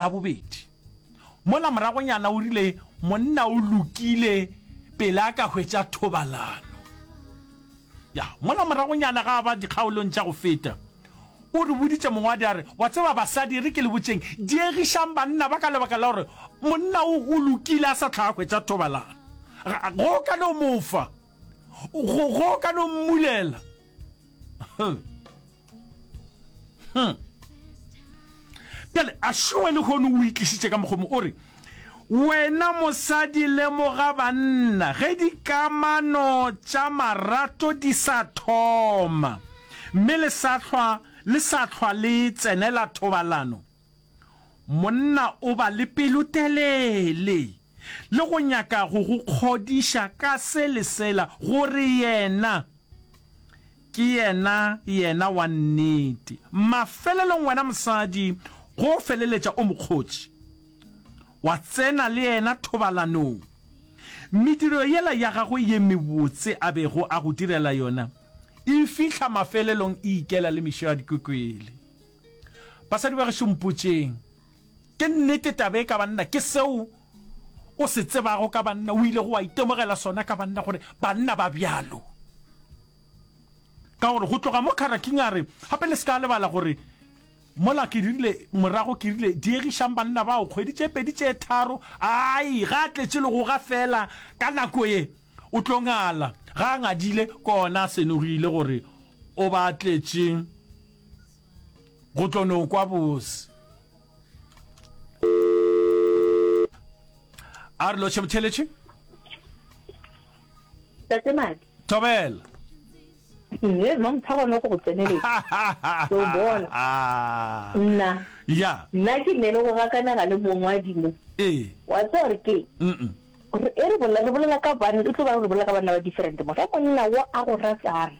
A bobedi, mola moragonyana o rile, Monna o lokile pele a ka hwetša thobalano. Ya, mola moragonyana ga a ba dikgaolong tša go feta, o re boditše mongwadi a re, Wa tseba, basadi, e re ke le botšeng, diegišang banna ba ka lebaka la gore monna o, o lokile a sa hlwa a hwetša thobalano. Ga, ga o ka no mo fa. Go, ga o ka no mmulela. bjale a šoe le kgone o itlisitše ka mokgomo o re wena mosadi lemoga banna ge dikamano tša marato di sa thoma mme le sa hlwa le tsenela thobalano Monna o ba le pelotelele le go nyaka go go kgodiša ka se le sela gore yena ke yena yena wa nnete. Mafelelong wena mosadi go feleletša o mo kgotše, wa tsena le yena thobalanong. Mediro yela ya gagwe ye mebotse a bego a go direla yona e fihla mafelelong e ikela le mešo ya dikokwele. Basadi ba gešo mpotšeng, ke nnete taba e ka banna ke seo o se tsebago ka banna, o ilego wa itemogela sona ka banna gore banna ba bjalo? Ka gore go tloga mo Karaking a re gape le se ka lebala gore mola ke rile morago ke rile diegišang banna bao kgwedi tše pedi tše tharo ai ga a tletše le go ga fela ka nako ye o tlo ngala ga a ngadile kona a senogile gore o ba tletše go tlo no kwa bose a re loše botheletše tatemadi thobela ye mma motshaba no go go tseneletsa o bona nna ya nna ke nne le go gakanaga le mongwadimo ee wa tsa gore ke gore e re bolela re bolela ka banna e tlo ba re bolela ka banna ba different mo ge monna wo a go ratang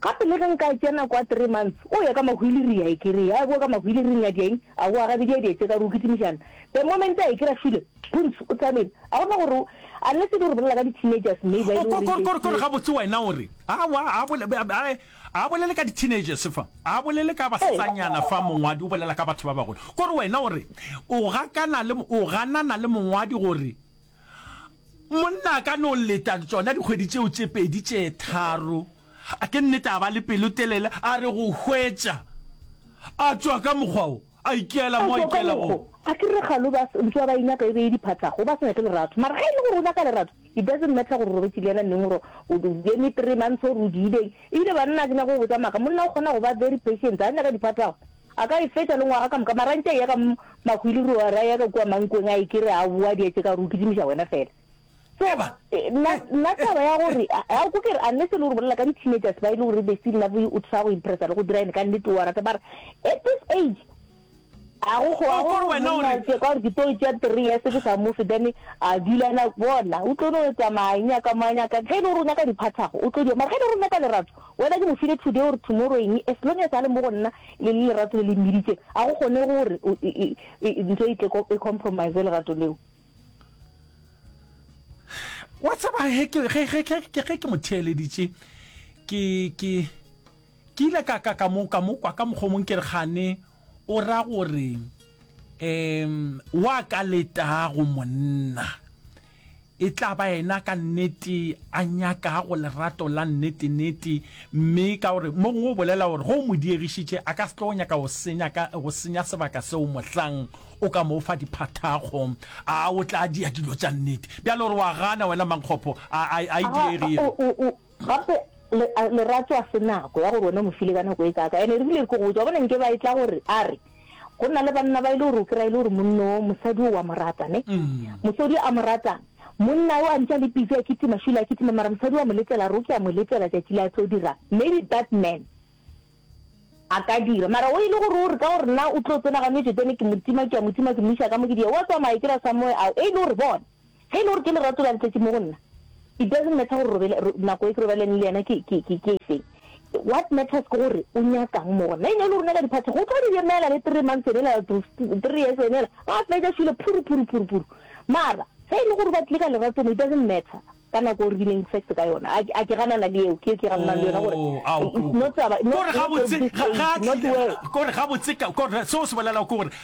Gape le ge nka tsena kwa three months, o ya ka mahwiliria e kere ya boa ka mahwiliring a diaing a boa ga bedi a dietse ka re o kitimišana. The moment a e kera shule, Puns o thabile. A go na gore o, unless e le gore o bolela ka di teenagers maybe ba e le gore Kore, kore, kore gabotse wena o re, awa, a bole, a, a, a bolele ka di teenagers fa, a bolele ka basetsanyana fa, mongwadi o bolela ka batho ba bagolo. Kore wena o re, o gakana le, o ganana le mongwadi gore Monna a ka no leta tšona dikgwedi tšeo tše pedi tše tharo, a ke nnete a ba le pelotelele, a re go hwetša a tšwa ka mokgwa wo, a ikela mo a ikela gona. A ke re kgalo ba ntse ba ba e nyaka e be e diphatlago, ba se nyake lerato. Mara ge e le gore o nyaka lerato, it doesn't matter gore o robetše le yena neng, gore o eme three months or o diileng. Ebile banna ke nyaka go botša maaka, monna o kgona go ba very patient, ga nyaka diphatlago. A ka e fetša le ngwaga ka moka, mara a ntše a eya ka mahwilirou, a re a eya ka kua mankong a e ke re a boa, di etše ka gore o kitimiša wena fela. So, Eba. nna, nna taba ya gore, ga o ko ke re, unless e le gore o bolela ka di-teenagers ba e le gore they still love you, o try go impressa le go dira eng, ka nnete o a rata, mara at this age, ga go go, ga O go gore gore wena o monna re- tše, ka gore ke tlo tšea three years ke sa mofe, then a dula na bona, o tlo no etsa mang, nyaka mang, nyaka, ge e le gore o nyaka diphathago, o tlo di, mara ge e le gore o nyaka lerato, Wena ke mo file today or tomorrow eng, as long as a le mo go nna le le lerato le le mmiditšeng, ga go kgonege gore ntho e tle e compromise lerato leo. Wa tseba he ke ge ge ge ge ge ke mo theeleditše ke ke ke ile ka ka ka mo ka mo kwa ka mokgomong ke re gane o ra gore um wa ka letago monna E tla ba yena ka nnete a nyakago lerato la nnete-nnete, mme ka gore mo go bolela gore ge o mo diegišitše a ka se tlo nyaka go senya, ka, go senya sebaka seo mohlang o ka mo fa diphathago. A o tla dia dilo tša nnete? Bjale o re wa gana, wena mankgopho a, a, a e diegile. Gape, Le, Lerato a se nako, ya gore wena o mo file ka nako e kaaka. Ene e rile ke go botša, wa bona, nke ba etla gore, a re, Go na le banna ba e le gore o kry-a e le gore monna wo, mosadi wo wa mo rata, ne? Mosodi a mo ratang. Monna wo a ntše a le busy a kitima, šula a kitima, mara mosadi wa mo letela, a re o ke a mo letela tšatši le a tlo dirang. Maybe that man a ka dira. Mara wo e le gore o re ka gore nna o tlo tsena ganoetšo, then ke mo tima, ke a mo tima, ke mo iša ka mo ke di ya, wa tsamaya, ke ra somewhere, ao, e le gore, bona, Ge e le gore ke lerato la letšatši mo go nna, it doesn't matter gore robele, ro, nako e ke robalaneng le yena ke, ke, ke, ke efeng. What matters ke gore o nyaka'ng mo go nna. E ne e le rona ka diphathi, go tlo di emela le three months ene ela, to three years ene ela, ba fetša šwile phuru, phuru, phuru, phuru. Mara, ge e le gore ba tlile ka lerato mo, it doesn't matter ka nako o rileng sex ka yona. A, a ke ganana le eo, ke eo ke gananang le yona gore, Oh, ao, it's not taba, not, kore not gabotse, ga, ga a tlile, kore gabotse, ka, kore seo o se bolelago ke gore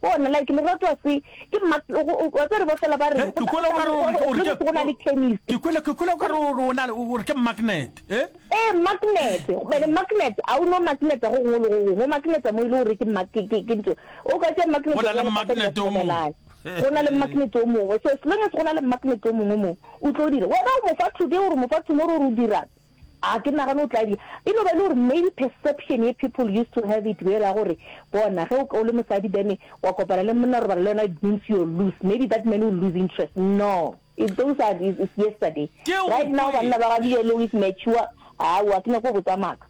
Bona, like Lerato a se ke mma, wa tsere ba fela ba re. Ke kwele o ka re o re o re ke. Go na le chemist. Ke kwele ke kwele o ka re o na le o re ke magnet, eh? Eh, magnet. Bene magnet, a o no magnet go gongwe le go gongwe. O magnet mo ile o re ke mma ke ke ke ntho. O ka tšea magnet. Go na le magnet o mongwe. Go na le magnet o mongwe. So as long as go na le magnet o mongwe mo, o tlo dira. Wena o mo fa today o re mo fa tomorrow o re o dirang. A ke nagane o tla di. E no ba e le gore maybe perception ye people used to have it yela gore, bona, ge o, o le mosadi then wa kopana le monna, robala le yena, it means you're loose. Maybe that man will lose interest. No. If those are, is, is yesterday. Ke go Right now, kwe. banna ba ga bjelo is mature. Aowa, ke nyako botsa maaka.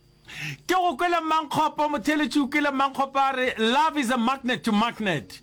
Ke go kwele Mmankgopo, Motheeletši o kwele Mmankgopo a re, Love is a magnet to magnet.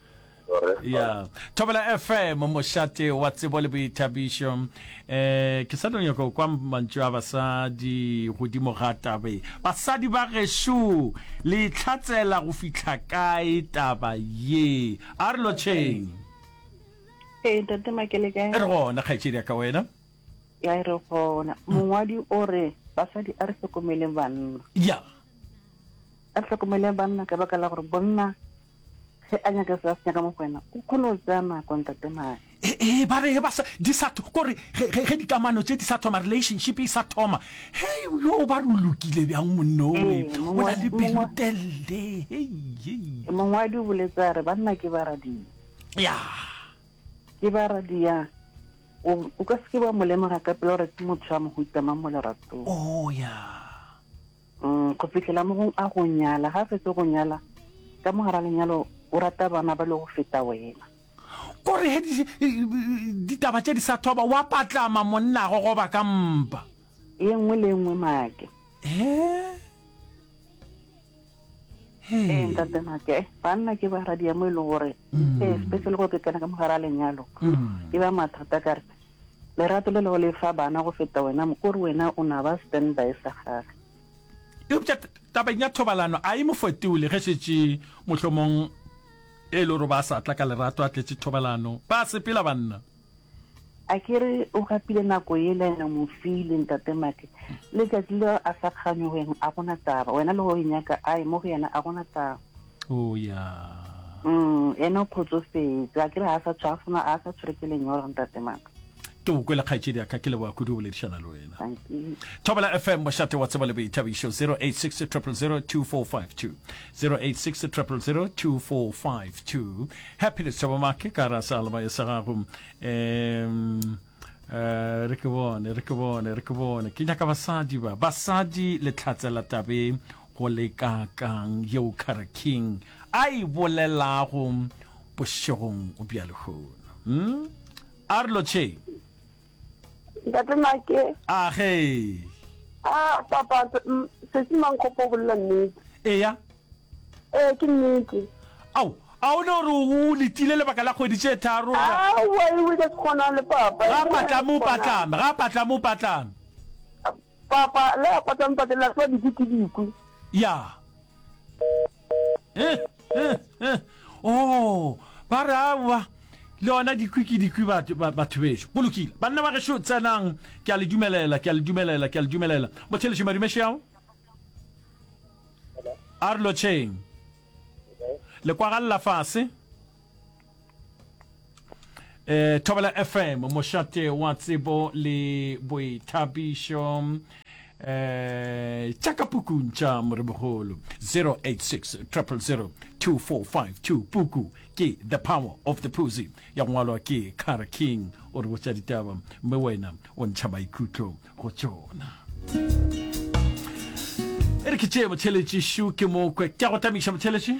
ya thobela fm mošate wa tsebo le boithabišo um ke sa tlo nyaka kwa mantšu a basadi godimo ga tabe basadi ba gešo le itlhatsela go fitlha kae taba ye a re lotšheng ee tate makele kae re gona kgaetšedi ya ka wena ya e re gona mongwadi o re basadi a re tlhokomeleng banna ya a re tlhokomeleng banna ka baka la gore bonna Ge a nyaka se a se nyaka mo go wena, o kgone go tsaya nako, Ntate Maya. Ee, ba re ge ba sa, di sa, kore ge, ge, ge dikamano tše di sa thoma, relationship e sa thoma, hei, yoo, ba re o lokile bjang monna o, Ee, o mongwa, na le mongwa, pelotelele, hei, hei. mongwadi o boletse a re, banna ke baradia. Ya. Ke baradia. O, o ka se ke wa mo lemoga ka pela gore ke motho wa mohuta mang mo leratong. Oo, ya. Go fihlela mogong a go nyala. Ga a fetso go nyala, ka mo gara lenyalo o rata bana ba le go feta wena. Ko re he ditaba tše di sa thoba, wa patlama monnago goba ka mpa. Ye nngwe le ye nngwe Make. He? He. Ee, Ntate Make. Banna ke baradiya mo e lego gore, especially go ke kena ka mo gara lenyalo, e ba mathata ka re. Lerato le lego le fa bana go feta wena mokori wena o na ba stand by sa gage. Eupša tabeng ya thobalano a e mo fetole ge šetše mohlomong e le gore ba sa tla ka lerato a tletše thobalano. Ba sepela banna. A ke re o gapile nako yela ene o mo file ntate Maki. Letšatši leo a sa kganyoge a gona taba. Wena le go e nyaka a e mo go yena a gona taba. Oh yeah. Mm, ene o kgotsofetse. A kere ha sa tshwa fona, a sa tshwere ke lenyora ntate maka. Ke o kwele kgaetšedi ya ka ke leboa kudu boledišana le wena. Thank you. Thobela FM mošate wa tseba le boithabišo 086 000 2452 086 000 2452 Happiness Thabo Make ka ra sa leba sa gago um Eh, re ke bone re ke bone re ke bone ke nyaka basadi ba basadi le tlatse la tabeng Go le kaakang yeo Kara King a e bolelago bošegong bja lehono? Hm? A re Lotšheng? Ntate Nake. A ge. A papa, Sesi Mankgopo o bolela nnete. Eya. Ee, ke nnete. Ao, a o ne o re o letile lebaka la kgwedi tše tharo? A wa e wile kgona le papa. Ga patlame o patlame, ga patlame o patlame. Papa le a patang pate la swa dikwi ke dikwi. Ya. Eh, eh, eh. Oh, ba re awa le ona dikwi ke dikwi batho ba- batho bešo. Go lokile. Banna ba gešo tsenang. Ke a le dumelela, ke a le dumelela, ke a le dumelela. Mothelešo Madumešeao. A re lotšheng. Le kwagalla fase. Eh, Thobela FM, mošate wa tsebo le boithabišo eh tša ka pukung tša moribogolo 086 000 2452 puku ke the power of the pussy ya go ngwalwa ke cara king o re botša ditaba mme wena o ntšha maikutlo go tšona e re ke tšee motheletši shu ke mokwe ke a go tamiša motheletši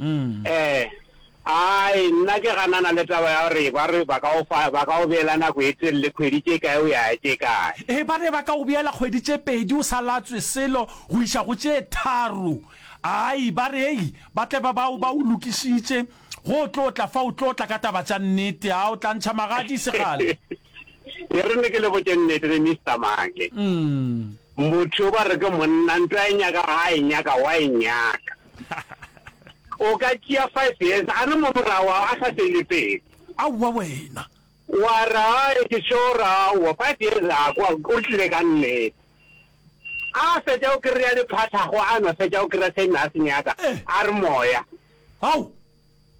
Ee, ai, nna ke ganana le taba ya gore ba re ba ka go fa, ba ka go beela nako e telele, kgwedi tše kae o ya ya tše kae. Ee, ba re ba ka go beela kgwedi tše pedi o sa latswe selo go iša go tše tharo. Ai, ba re, ei, ba tle ba ba o, ba o lokišitše, go o tlo tla fa o tlo tla ka taba tša nnete. A o tla ntšha magadi e se kgale. E re ne ke le botše nnete le Mister Maake. Motho yo ba re ke monna, nto ya nyaka ga a e nyaka, wa e nyaka. O ka tšea five years a re mo morago ao a sa fele pelo. Aowa wena. Wa ra ke sure aowa five years a kwa o tlile ka nnete. A fetša o kry-a diphathago a no fetša o kry-a se nna a se nyaka a re moya. Ao.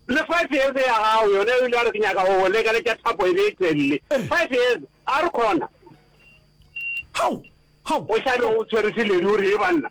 Le five years ya gago yona o ile a re ke nyaka go go lekaletša thapo e be e tswelele. Five years a re khona. Hao. Hao. O xa be o tshwere seleri o re e banna.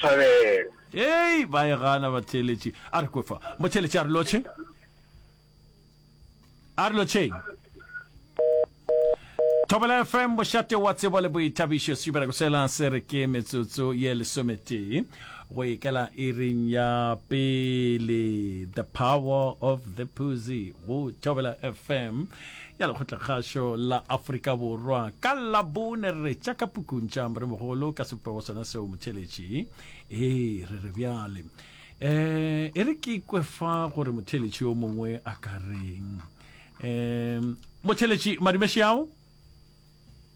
thabela. Hei, ba e gana batheeletši. A re kwe fa. Motheeletši a re lotšhe. A re lotšheng. Thobela FM, bošate wa tsebo le boithabišo, sejubela go sela se re ke metsotso ye lesometee go ikela iring ya pele the power of the puzy go thobela fm ya lekgotlakgašo la afrika borwa ka labone re re tšaka pukuntša moremogolo ka sepego sona seo motheletši ee re re bjale um e re ke ikwe fa gore motheletši yo mongwe a ka reng um motheletši madumeši ao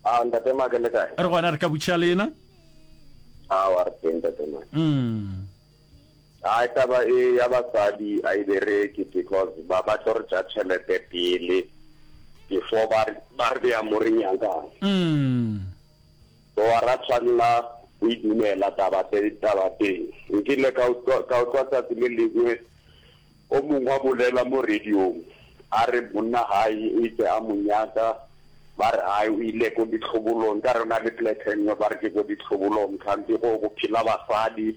a ah, ntate make le kae re gona re ka butšha le ena a ah, wa re teng ntate make mm. Hai taba e ya basadi a e bereke because ba ba tlo re ja chelete pele before ba ba re bea mo re nyakang. Mm. So a ra tshwanela go e dumela taba tse taba teng. Nkile ka utlwa ka utlwa tsatsi le lengwe O mongwe a bolela mo radiong a re monna gae o itse a mo nyaka, ba re gae o ile ko ditlhobolong, nkare o na le plek engwe ba re ke ko ditlhobolong kganthe go go phela basadi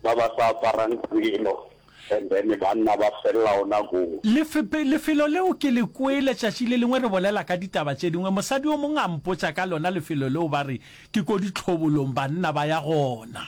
ba ba sa aparang selo and then banna ba felela ona koo. Lefepe, lefelo leo ke le kwele tšatši le lengwe re bolela ka ditaba tše dingwe, mosadi o mongwe a mpotša ka lona lefelo leo ba re ke ko ditlhobolong banna ba ya gona.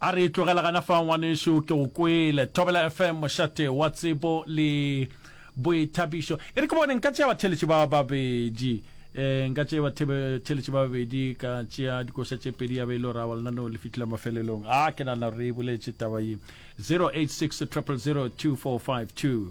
A re tlogela gana fa ngwanešu ke go kwele Thobela FM mošate wa tsebo le boithabišo. E re ke bone nka tšea batheletši ba babedi eh, nka tšea batheletši ba babedi ka tšea dikoša tše pedi ya be e le raba lenaneo le fitlhile mafelelong. A ke nana re e boletše taba ye 086 000 2452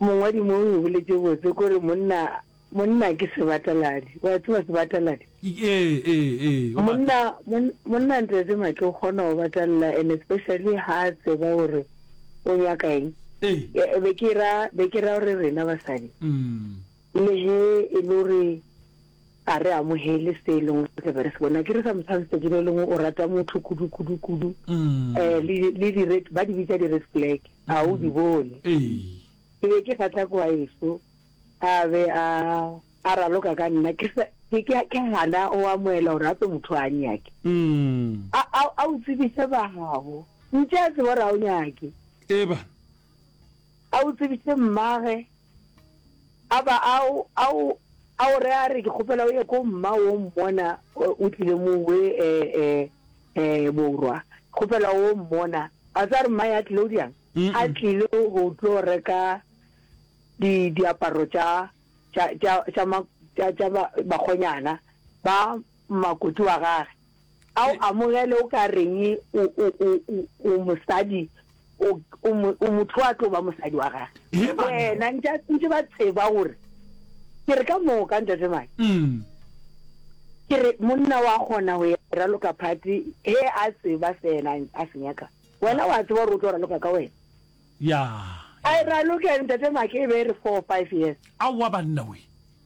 mongwadi mo o boletse botse kore monna monna ke sebataladi wa tseba sebataladi ee ee ee monna monna ntsetse matle o kgona go batalla and especially ha a tseba gore o nyaka eng ee be ke ra be ke ra gore rena basadi mm Lehe e le gore ga re amogele se e leng re be re se bona, akere sometimes letsatsi le lengwe o rata motho kudu kudu kudu um le di-red ba di bitsa di-red flag ga o di bone. Ke be ke kgatlha kwa eso a be a a raloka ka nna ke gana o amoela gore a tse motho a nyake a o tsebise ba gago ntse a tseba gore a o nyake a o tsebise mmage A ba a o, a o, a o re a re, ke kgopela o ye ko mma wo mmona o tlile mo we e, e, e, borwa. Kgopela wo mmona. A tsa re mma ya tlile o diang? A tlile go tlo reka di, diaparo tša, tša, tša, tša ma, tša, tša ba, bakgonyana ba makoti wa gage a o amogele o ka reng o, o, o, o, o mosadi, o, o, mo- o motho a tlo ba mosadi wa gage. He, banna. Wena ntša ntše ba tseba gore ke re ka moka ntate mane Mm. ke re monna wa kgona go ya raloka phati he a tseba se yena a se nyaka wena wa tseba gore o tlo raloka ka wena ya a e raloke ntate make e be e re four five years aowa banna we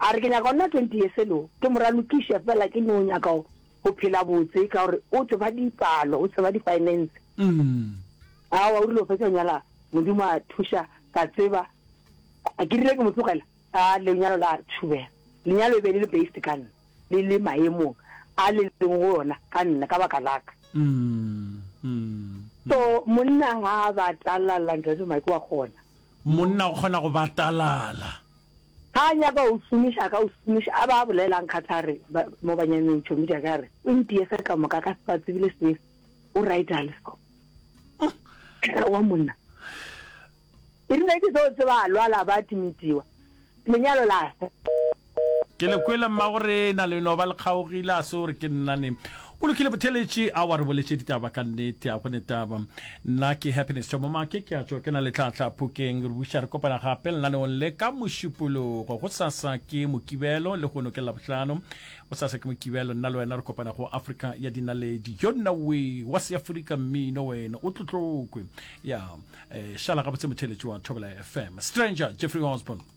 A re, Ke nyaka go nna twenty years ago, ke mo ralokiša fela ke no nyaka go go phela botse ka gore o tseba dipalo, o tseba di-finance. Aowa, o rile go fetša go nyala Modimo a thuša ka tseba ke rile ke mo tlogela a lenyalo la tšhubela. Lenyalo e be le le based ka nna, le le maemong a le leng go ona ka nna ka baka laka. So monna ga a batalala, Ntate Mike, wa kgona. Monna o kgona go batalala. Ga a nyaka o šomiša, a ka o šomiša, a ba a bolela a nkgatha a re, ba, mo banyameng tšhomi tša ka, a re, o ntiye ge ka moka, ka se ba tsebile se, o right a le so. Ka wa monna. E rile ke tlo tseba a lwala ba timitiwa. Lenyalo la. Ke le kwele mma gore na le no ba le kgaogile a se o re ke nna ne. O lokile botheletši a wa re boletše ditaba ka nnete a gone taba nna ke happiness thomo make ke a tšwa ke na le tlhatlha phokeng re buša re kopana gape lenaneong le ka mošupologo go sasa ke mokibelo le gono ke labohlano go sasa ke mokibelo nna le wena re kopana go afrika ya dinaledi yo nna we wa seafrika mmino wena o tlotlokwe ya eh, šala gabotse motheletši wa thobela fm stranger jeffrey osborne